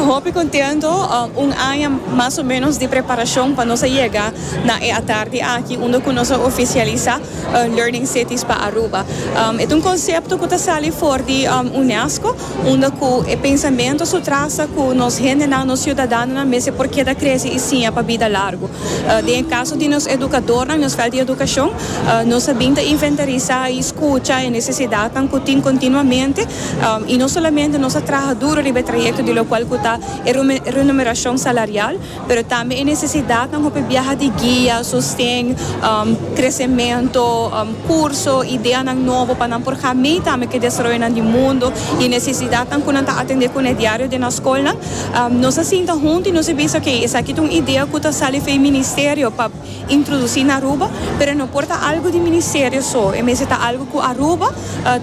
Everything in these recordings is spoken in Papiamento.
Hopi contento, un aña mas o menos di preparacion pa nos a yega na e atardi aki unda cu nos a oficialisa Learning Cities pa Aruba. E ta un concepto cu ta sali for di UNESCO unda cu e pensamento su traza cu nos hendenan, nos ciudadanonan mester por keda crece y siña pa bida largu. Den e caso di nos educadornan, nos fel di educacion, nos a bin ta inventarisa y scucha e necesidadnan cu tin continuamente Um, y no solamente nos a traha duro riba e trayecto di locual cu ta e renumeracion salarial, pero tambe e necesidadnan hopi biaha di guia, sosten, um, crecemento, um, curso, ideanan nobo pa nan por ga mee tambe cu e desaroyonan di mundo y e necesidadnan cu nan ta atende cu ne diario den nan scolnan. Um, nos a sinta hunto y nos a bisa, ok, esaki ta un idea cu ta sali fen Ministerio pa. introduci na Aruba, pero e no por ta algo di Ministerio so, e mester ta algo cu Aruba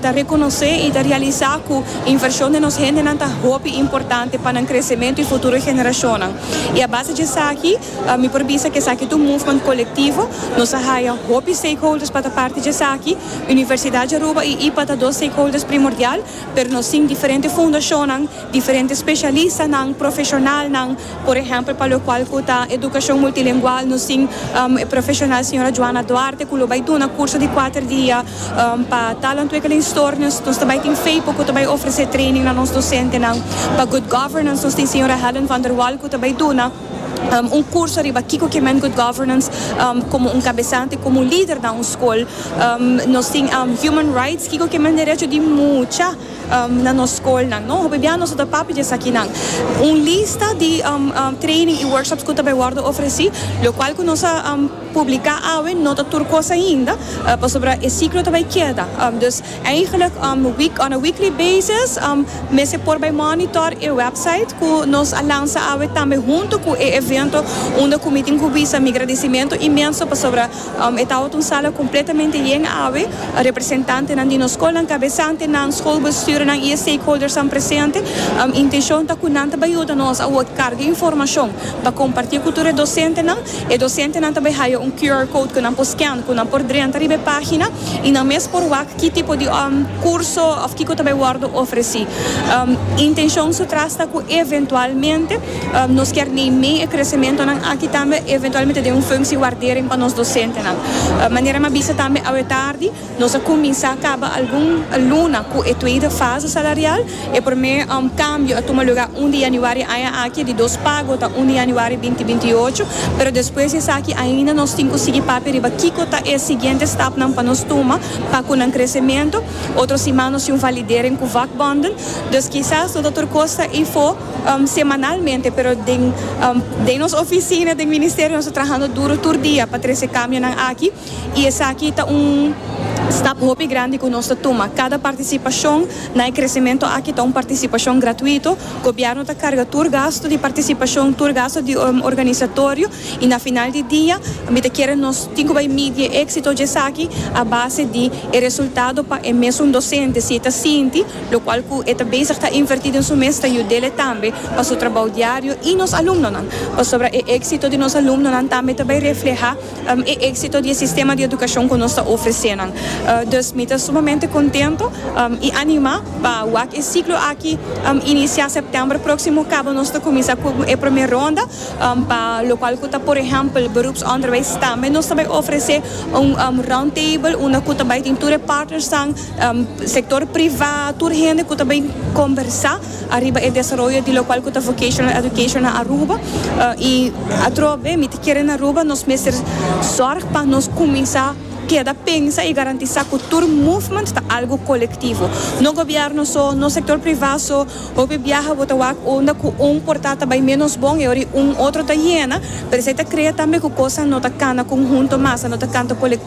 ta reconoce y ta realisa cu inversion den nos hendenan ta hopi importante pa nan crecemento y futuro generacionnan. Y a base dje esaki mi por bisa cu esaki ta un movement colectivo, nos a haya hopi stakeholders pa ta parti dje esaki, Universidad dje Aruba y IPA ta dos stakeholders primordial, pero nos tin diferente fundacionnan, diferente specialistanan, profesionalnan, Por ehèmpel, pa lokual ku ta edukashon multilingual, nos tin e profeshonal señora Joana Duarte ku lo bai duna kurso di kuater dia pa taalontwikkelingstoornis. Nos ta bai tin Feypo ku ta bai ofresé training na nos dosentenan. Pa Good Governance nos tin señora Helen van der Wal ku ta bai duna un kurso riba kiko ke men Good Governance komo un kabesante, komo un lider na un skol. Nos tin Human Rights, kiko ke men derecho di mucha. Na nos skolnan no hopi bia nos a ta papia di esakinan. Un lista di training i workshops ku ta bai wòrdu ofresí, lokual ku nos a publiká awe no ta tur kos ainda, pasobra e siklo ta bai keda. Dus eigentlik on a weekly basis mester por bai mònitor e wèpsait ku nos a lansa awe tambe huntu ku e evento unda ku mi tin ku bisa mi gradisimentu inmenso pasobra E tabata un sala completamente yen awe, representantenan di nos scolnan, cabesantenan, scolbestuurnan y e stakeholdersnan presente. Intencion ta cu nan ta bay yuda nos a word carga informacion pa comparti cu tur e docentenan. E docentenan ta bay haya un QR code cu nan por scan, cu nan por drenta riba e pagina y nan mes por wak. Ki tipo di curso of kico ta bay wordo ofreci? Intencion su tras ta cu eventualmente nos kier nei mey e crecementonan aki tambe eventualmente den un functie waardering pa nos docentenan. Manera mi a bisa tambe awe tardi, nos a cuminsa caba algun luna cu e tweede fase salarial. E promé kambio a tuma lugá un di yanüari aña aki, di dos pago ta un di yanüari binti binti i ocho, pero despues di esaki ainda nos tin ku sigui papia riba kiko ta e siguiente stapnan pa nos tuma pa ku nan kresementu. Otro siman nos tin un validering ku vakbonden, dus kisas no ta tur kos ta ifo semanalmente, pero den den nos ofisina den ministerio nos ta trahando duru tur dia pa trese kambionan aki. y esaki ta un stap hopi grandi cu nos ta tuma. Cada participacion na e crecemento aki ta un participacion gratuito. Gobierno ta carga tur gasto di participacion, tur gasto di organisatorio y na final di dia mi ta kere nos tin cu bay midi e exito dje esaki a base di e resultado pa e mesun docente si e ta sinti locual cu e ta bezig ta inverti den su mes ta yudele tambe pa su trabao diario y nos alumnonan pasobra e exito di nos alumnonan tambe ta bay refleha e éksito di e sistema di edukashon ku nos ta ofresé nan. Dus mi ta sumamente kontentu i animá pa wak e siklo aki inisiá sèptèmber próksimo kaba nos ta kuminsá ku e promé ronda pa lokual ku ta por ehèmpel Beroepsonderwijs. Tambe nos ta bai ofresé un roundtable unda ku ta bai tin tur e partnersnan, sektor privá, tur hende ku ta bai kombersá. ariba e desaroyo di lokual ku ta Vocational Education na Aruba i atrobe mi ta kere na Aruba nos mester sòrg pa nos kuminsá keda pensa i garantisá ku tur movement ta algu kolektivo no gobièrnu so no sektor privá so hopi biaha bo ta wak unda ku un portá ta bai ménos bon i ora un otro ta yena pero esei ta krea tambe ku kosnan no ta kana konhunto mas a no ta kanta kolektivo.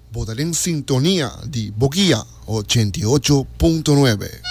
Bo ta den sintonia di Bo Guia ochenta i ocho punto nuebe.